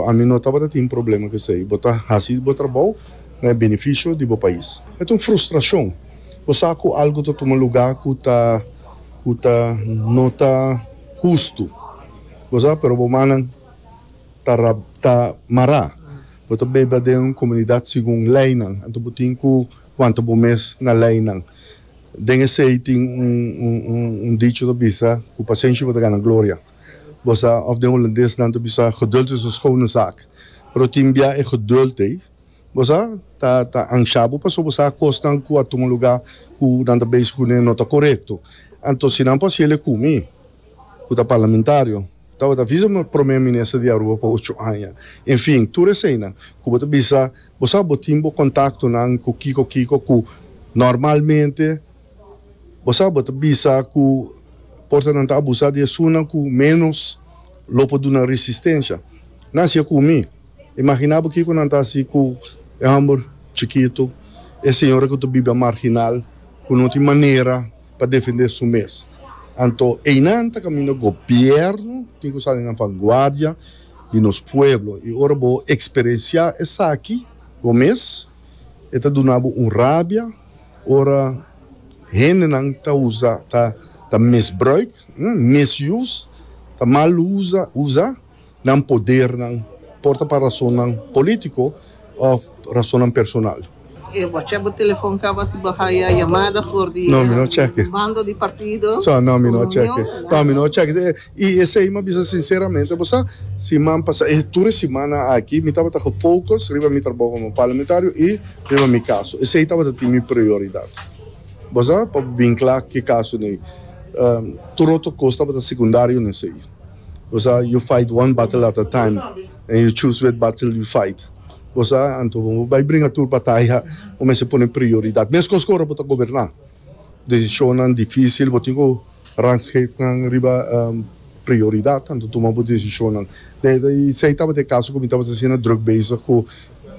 Pa ami no tabata tin problema cu esey. Bo ta haci bo trabou na e beneficio di bo pais. E ta un frustracion. Bo sa cu algo ta tuma lugar cu ta cu ta no ta hustu. Bo sa, pero bo mannan ta ra ta mara. Bo ta beba den un comunidad segun leynan. Anto bo tin cu wanta bo mes na leynan. Den esey tin un un un dicho ta bisa cu pacencia bo ta gana gloria. Bo sa, òf den Holandes nan ta bisa geduld is un schone zaak. Pero tin bia e geduld ei, bo sa, ta ta ansha bo pasobra bo sa kosnan ku a tuma lugá ku nan ta beisk ku ne no ta korekto. Anto si nan por hasiel e ku mi, ku ta parlamentario, tabata visa mi promé minister di Aruba pa ocho aña. Enfin, tur eseinan ku bo ta bisa, bo sa bo tin bo kontaktonan ku kiko kiko ku normalmente, Bo sa bo ta bisa ku portanan ta abusá di esunnan ku ménos lo por duna resistensia? Nan siña ku mi. Imaginá bo kiko nan ta hasi ku e hòmber chikitu, e señora ku ta biba a marginal, ku no tin manera pa defendé su mes. Anto einan ta kaminda gobièrnu tin ku sali na vanguardia di nos pueblo. I ora bo eksperensiá esaki bo mes, e ta duna bo un rabia. Ora hendenan ta usa, ta misbruik, misuse, ta mal usa nan podernan, por ta pa rasonnan polítiko òf rasonnan personal. E bo chèk bo telefòn kaba si bo haya yamada for di e bando di partido? No, mi no chèk'e. I esei mi a bisa sinseramente bo sa, siman pasá, tur e simana aki mi tabata gefocus riba mi trabou komo parlamentario i. Riba mi kaso. Esei tabata tin mi prioridat. Bo sa, pa bo bin kla ke kaso n'ei. Tur otro kos tabata sekundario n'esei. Bo sa, yu fight one battle at a time en yu choose which battle yu fight. Bo sa, anto bo bai bringa tur bataya, bo mester pone prioridat. Meskos ku ora bo ta goberná. Decisionnan dificil bo tin cu rangschiktnan riba prioridad nan ta tuma bo decisionnan. Esey tabata e caso cu mi tabata asina druk bezig cu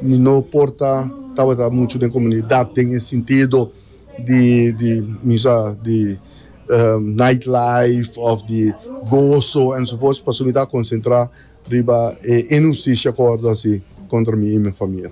mi no por ta tabata mucho den comunidad den e sintido di di bisa di night life of di gozo enzovoorts pasobra mi ta concentra riba e inhusticia cu a wordo haci contra mi y mi famia.